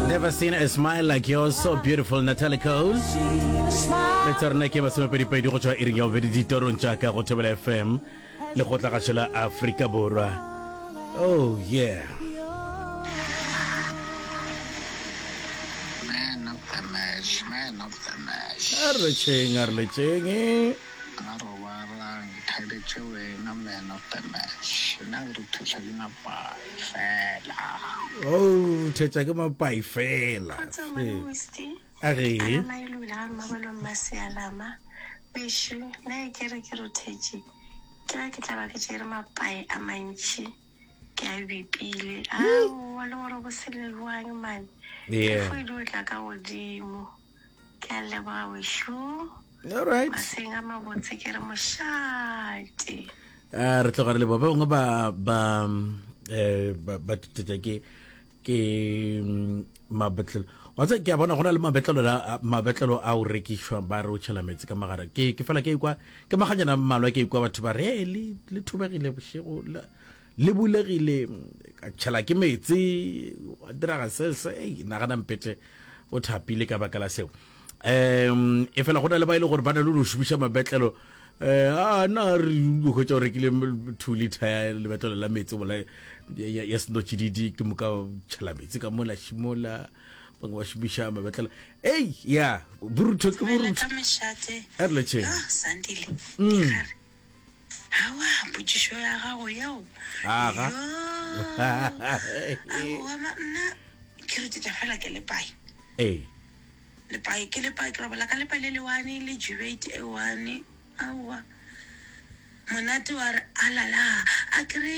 Never seen a smile like yours, so beautiful, Natalie Cole. le tsa rena ke masomepedipedi go tswa iring ya bobedi ditorong jaaka go thobela fm le go tla gašo la aforika borwa oh yeah Man of the match, man of the match. a re tšheng a re letšeng Ga robalang thabetše wena man of the match nna ke re thetsha ke mapai fela. Oh thetsha ke mapai fela. Kgotso mane Wisty. A re. Ana na e lula ga mabolo mma sealama. Weshu na e kere ke rothetše. Ke ra ke tla ba ke tšere mapai a mantši ke a bipile. Aowa le gore bo seleloang man. Yeah. Ke fo e di o tla ka godimo. Ke a leboga wešo. All right. Maseng a mabotse ke re mošate. Ah, re tloga re le ba bangwe ba ba eh ba ba tšetša ke ke mm, mabetlelo wa tse ke a bona gona le mabetlelo la mabetlelo a o rekišwa ba re o tšhela metsi ka magara ke ke fela ke kwa ke maganyana mmalwa ke kwa batho ba re "Hey, le le thubegile bošego la Le bulegile, ka tšhela ke meetse, gwa diraga se, se, ei, nagana Mpete o thapile ka baka la seo. Um, efela go na le ba e le gore ba na le go šomiša mabetlelo, um, a na re hwetša o rekile two liter ya lebetlelo la meetse bola ya, ya senotšididi, ke moka tšhela meetse ka mola šimola, bangwe ba šomiša mabetlelo. Ei, ya, borutho ke borutho. Re leta mešate, yo, Sandile, mm. dikgare, Aowa, potšišo ya gago yeo. Aga. Aowa, ma, nna ke re tšetša fela ke le pai. Ee. Le pai, ke le pai, ke robala ka lepa le le one, le jubate e one. Aowa. Monate wa re, alala, a ke re,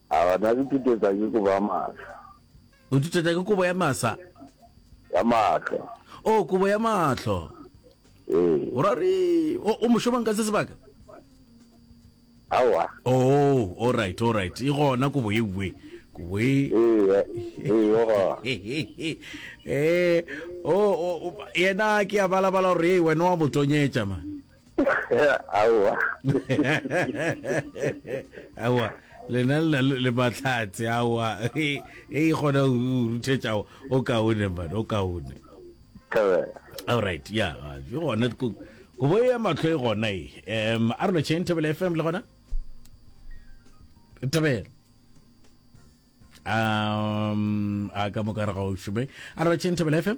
A batho ba nthutetsa ke kobo ya mahlo. O nthutetsa ke kobo ya masa? Ya mahlo. Oh, kobo ya mahlo. Ee. O ra re, o, o mošomang ka se sebaka? Awa. Oh, all right, all right. E gona kobo e uwe. Kobo e... Ee, ee, o gona. Eh, oh, oh, yena ke a balabala gore, ee, wena wa mo tonyetša, man. aowa aowa lena le na le matlhatse aowa e e kgona go ruthetša o kaone mane o kaone all right ya ke gona go bo ya matlho e gona e um a rona chain tebele fm le gona tebele um a ka moka re ga o šome a rona chain tebele fm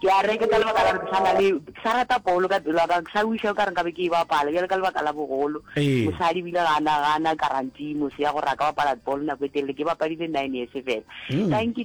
Ke a re, ke ka lebaka la gore ke sa na le, ke sa rata bolo ka pelo ya ka, ke sa wiša o ka re nka be ke e bapala, bjale ka lebaka la bogolo. Ee. Mosadi o ile ga na, ga na guarantee mose ya gore a ka bapala bolo nako e telele, ke bapadile nine years fela. Tanki, tanki.